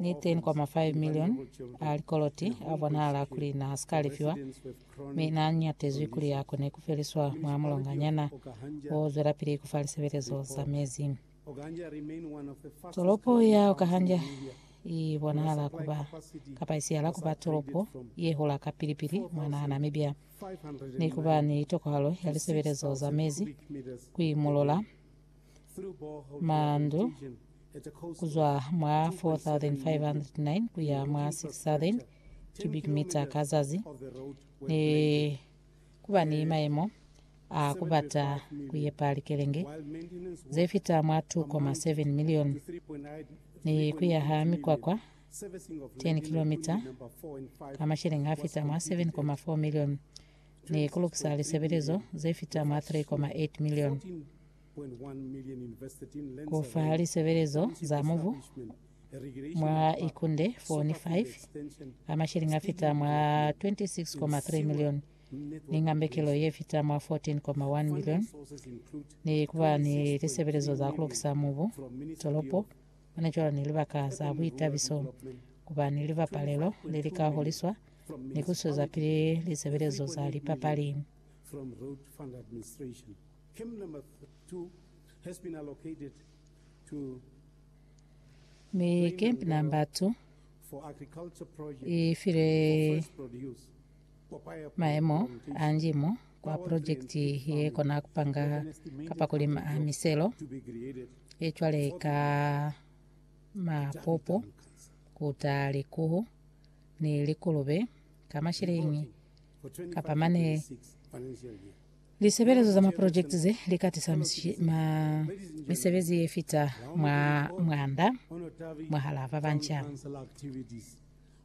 Niteñi kwa ma 5 milioni a likoloti a bonahala kuli na si ka lefiwa, mi na ñatezwi kuli a kone ku feliswa mwa mulonganyana o zwelapili ku fa lisebelezo za mezi. Tolopo ya Okahanja i bonahala ku ba, kapa i siyala ku ba tolopo ye hola ka pili-pili mwa naha Namibia, ni ku ba ni tokohalo ya lisebelezo za mezi ku i mulola. Mandu ku zwa mwa 4,509 ku ya mwa 6,000 cubic meter ka zazi, ne ku ba ni mayemo a ku bata ku yepa likelenge ze fita mwa 2.7 milioni ni ku yaha mikwakwa 10 kilometre ka masheleng a fita mwa 7.4 milioni ni ku lukisa lisebelezo ze fita mwa 3.8 milioni, ku fa lisebelezo za mubu mwa Ikunde 4 ni 5 a mashilingi a fita mwa 26.3 milioni, ni ngambekelo ye fita mwa 14.1 milioni, ni ku ba ni lisebelezo za ku lukisa mubu tolopo Hona cwalo ni libaka za buitabiso kuba ni libapalelo le li ka holiswa ni ku swezapili lisebelezo za lipapali. Mi Camp Number 2 i file Mayemo a njimo kwa projekiti ye kona kupanga kapa kulima a miselo ye cwale ka mapopo, kuta likuhu ni likulube ka mashilingi kapa mane. Lisebelezo za maprojekiti ze li ka tisa misebezi ye fita mwa mwanda mwahal'a ba banca.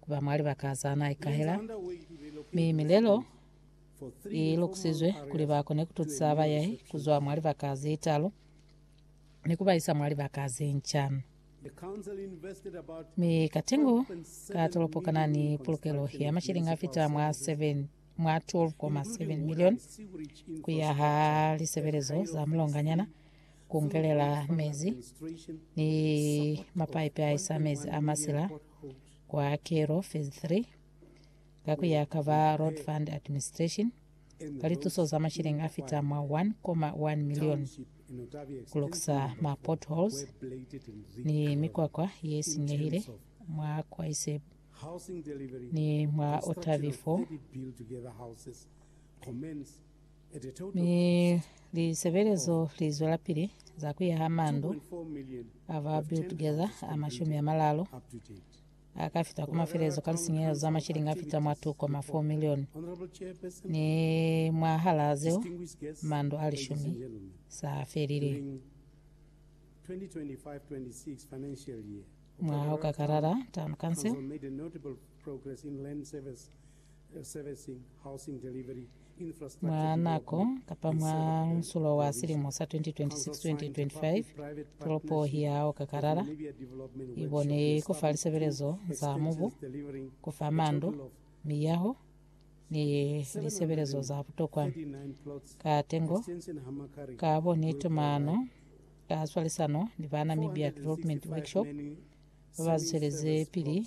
Ku ba mwa libaka za na ikahela, mi milelo i lukusizwe kuli ba kone ku tusa bayahi ku zwa mwa libaka ze talu ni ku ba isa mwa libaka ze nca. Mi katengo ka tolopo ka na ni pulukelo ya mashilingi a fita mwa 7 mwa 12.7 milioni ku yaha lisebelezo za mulonganyana, ku ngelela mezi ni mapaipi a isa mezi a masila kwa kelo phase 3 ka ku ya ka ba Road Fund Administration ka lituso za masheleng a fita mwa 1,1 million ku lukisa ma potholes ni mikwakwa ye sinyehile mwa Kwaiseb ni mwa Otavi 4. Mi lisebelezo lizwelapili za kuyaha mandu aba Build Together a mashumi amalalu akafita ku mafelezo ka lisinyehelo za mashilingi afita mwa 2.4 milioni, ni mwahalaa zeo mandu a lishumi saafelile. Mwaha okakalala, Town Council. Mwa nako kapa mwa musulo wa silimo sa 2026-2025, tolopo ya Okakarara i bone ku fa lisebelezo za mubu, ku fa mandu, miyaho, ni lisebelezo za butokwa. Ka tengo, ka bo ni tumano ka swalisano ni ba Namibia Development Workshop, ba ba zweleze pili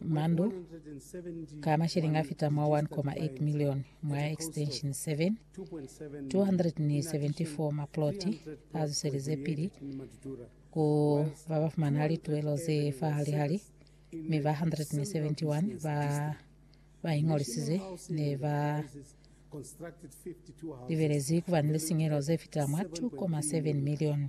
mandu ka masheleñi a fita mwa 1.8 milioni mwa Extension 7, 274 maploti a zuseleze pili ku ba ba fumana lituelo ze fahalihali, mi ba 171 ba ba ingolisize ne ba libelezi ku ba ni lisinyehelo ze fita mwa 2.7 milioni.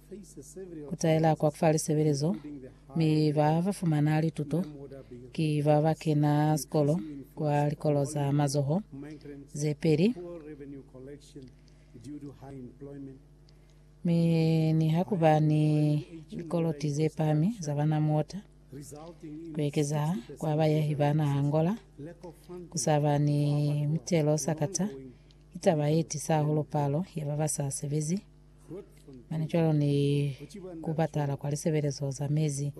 kutaela kwa kufa lisebelezo, mi ba ba fumana lituto ki ba ba kena sikolo kwa likolo za mazoho ze peli, mi ni ha kuba ni likoloti ze pami za bana muota, kuekeza kwa bayahi ba naha Angola, kusaba ni mutelo sakata ki taba ye tisa hahulu palo ya ba ba sa sebezi. Mane cwalo ni ku patala kwa lisebelezo za mezi.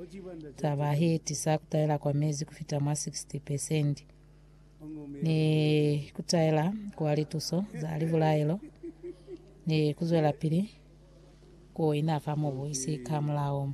Taba he tisa kutaela kwa mezi kufita mwa 60 pesendi ni kutaela kwa lituso za libulaelo ni kuzwela pili ku ina fa mobu isi ka mulao.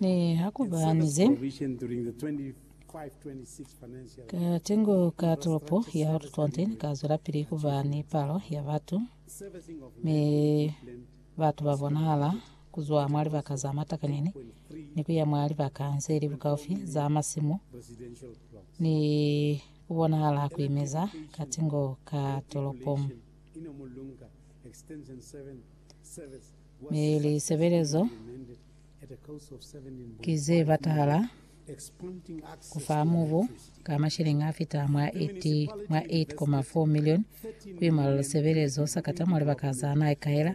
Ne ha ku ba ni ze ka tengo ka tolopo ya Oudtshoorn ka zwelapili ku ba ni palo ya batu, mi batu ba bonahala ku zwa mwa libaka za matakanyeni ni ku ya mwa libaka ze li bukaufi za masimu, ni ku bonahala ku imeza ka tengo ka tolopo. Mi lisebelezo ki ze batahala ku fa mubu ka mashilingi a fita mwa 8.4 milioni ku imwalo lisebelezo sa kata mwa libaka za naha kaela,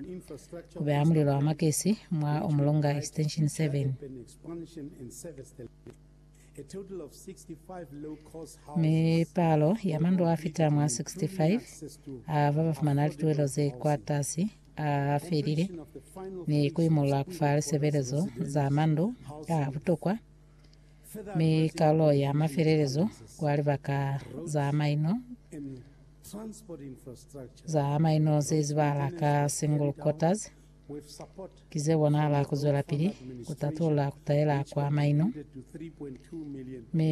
ku beha mulilo wa makesi mwa Umulonga Extension 7. Mi palo ya mandu a fita mwa 65 a ba ba fumana lituhelo ze kwa tasi A felile ni ku imolola ku fa lisebelezo za mandu a butokwa mi kalo ya mafelelezo kwa libaka za maino za maino ze zibala ka single quarters ki ze bonahala ku zwelapili ku tatulula ku taela kwa maino mi